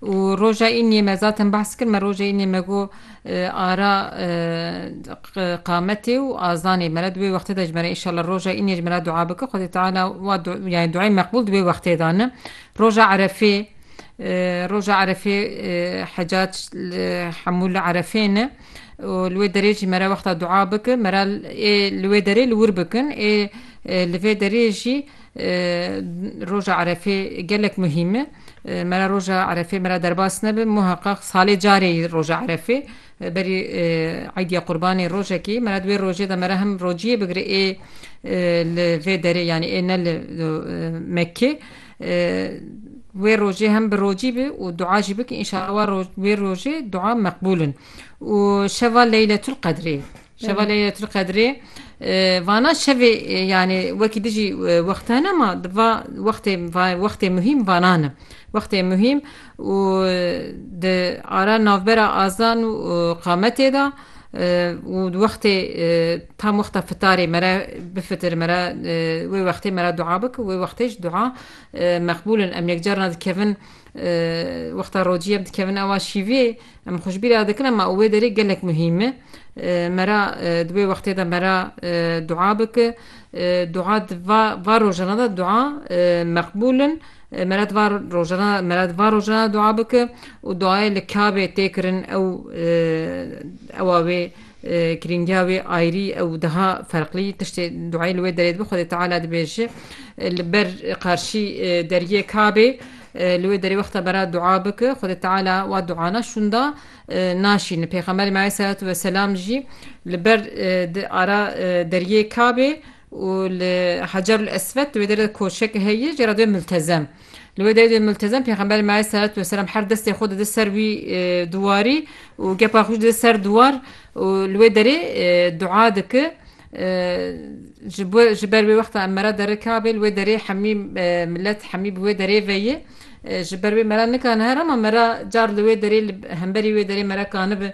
Û roja îniyê me zaten behs kir, me roja îniyê me got ara qametê û azanê me re di wê wextê de ji me re înşallah roja îniyê ji me re dua bike Xwedê Teala wa yanî duayê meqbûl di wê wextê de ne. Roja erefê roja erefê hecac li hemû li erefê ne û li wê derê jî me re wexta dua bikin me re ê li wê derê li wir bikin ê li vê derê jî Roja Erefê gelek muhîm e. Me re roja Erefê me re derbas nebe. Muheqeq salê carê yî roja Erefê. Berî Eîdîya Qurbanê rojek î. Me re di wê rojê de me re hem rociyê bigire ê li vê derê yanî ê ne li Mekkê. Wê rojê hem bi rocî bi û dua jî bike înşallah wê rojê dua meqbûl in. Û şeva Leyletul Qedrê. Şeva lê tu qedrê vana şevê yanî wekî dijî wexta ne ma di va wextê wextê muhîm vanan e wextê muhîm û di ara navbera azan û qametê de û di wextê tam wexta fitarê mere bifitir mere wê wextê mere dua bik wê wextê ji dua meqbûlin em yekcar na dikevin Wexta rojî em dikevin awa şîvê em xwe ji bîr re dikin ema wê derê gelek muhîm e. Me ra di wê wextê de me ra dua bike. Dua di va rojana de dua meqbûl in. Me ra di va rojana de me ra di va rojana de dua bike û duayê li kabê tê kirin ew ewa wê Kirîngiya wê ayrî û diha ferqlî, tiştê duayê li wê derê dibe Xwedê Teala dibêje li ber qarşî deriyê Kabê li wê derê wexta bera dua bike Xwedê Teala wa duana şûnda naşîne. Pêxemberê me aleyhî selatû weselam jî li ber di ara deriyê Kabê û li Hecerul Eswed di wê derê de koçek heye jê re dibê miltezem. Li wê derê dibê miltezem Pêxemberê me aleyhîsselatu wesselam her destê xwe dide ser wî dwarî û gepa xwe jî dide ser dwar û li wê derê dua dike ji bo ji ber wê wexta em mera derê Kabê li wê derê hemî milet hemî bi wê derê ve ye ji ber wê mera nikane here ma mera car li wê derê li hemberî wê derê mera kanibe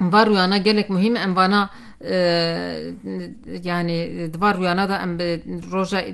Em van rûyana gelek muhîm e. Em vana yanî di van rûyana de em bi roja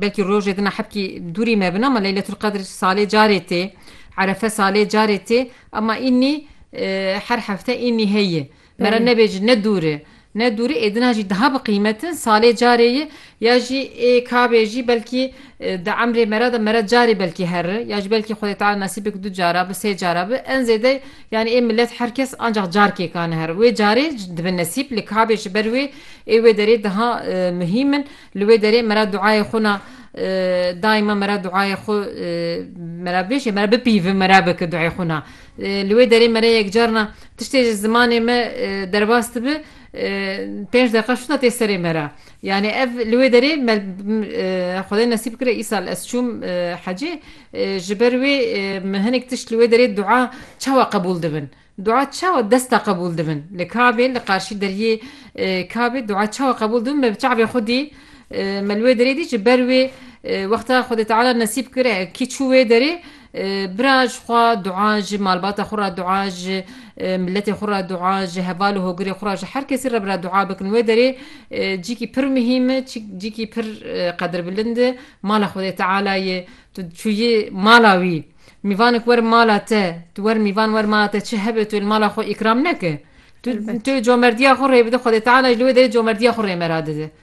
belkî rojê dina hebkî dûrî me bin ama Leyletul Qedr salê carê tê. Erefe salê carê tê ama înî her hefte înî heye. Mera nebêj ne dûr e. Ne dûrî ê din a jî daha bi qîmet in, salê carê ye ya jî ê kabê jî belkî di emrê me ra de me re carê belkî herre ya jî belkî Xwedê Teala nesîb bike du cara bi sê cara bi en zêde yanî ê milet her kes ancax carkê ka nehere wê carê dibe nesîb li kabê ji ber wê ê wê derê daha muhîm in li wê derê me ra duayê xwe na daima me ra duayê xwe me ra bêje me ra bipîve me ra bike duayê xwe na. Li wê derê me re yek carna tiştê ji zimanê me derbas dibe pênc deqa şûna tê serê me re. Yanî ev li wê derê me Xwedê nesîb kire îsal ez çûm hecê ji ber wê min hinek tişt li wê derê dua çawa qebûl dibin? Dua çawa desta qebûl dibin? Li Kabê li qarşî deriyê Kabê dua çawa qebûl dibin me bi çavê xwe dî me li wê derê dî ji ber wê wexta Xwedê Teala nesîb kire kî çû wê derê Bira ji xwe dua, ji malbata xwe re dua, ji miletê xwe re dua, ji heval û hogirê xwe re ji her kesî re bira dua bikin. Wê derê cîkî pir muhîm e, cîkî pir qedirbilind e mala Xwedê Teala ye. Tu çûyî mala wî, mîvanek werin mala te, tu werin mîvan werin mala te çi hebe tu li mala xwe îkram neke. Tu comerdiya xwe rê bide Xwedê Teala jî li wê derê comerdiya xwe rê me re dide.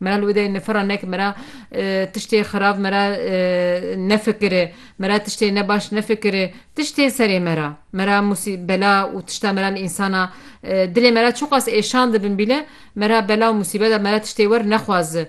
Mera li wêdeyê nifira nek mera tiştê xirab mera nefikire, mera tiştê ne baş nefikire, tişt tê serê mera. Mera musî bela û tişta mera li însana dilê mera çiqas êşan dibin bîle, mera bela û musîbeta mera tiştê wer nexwazi.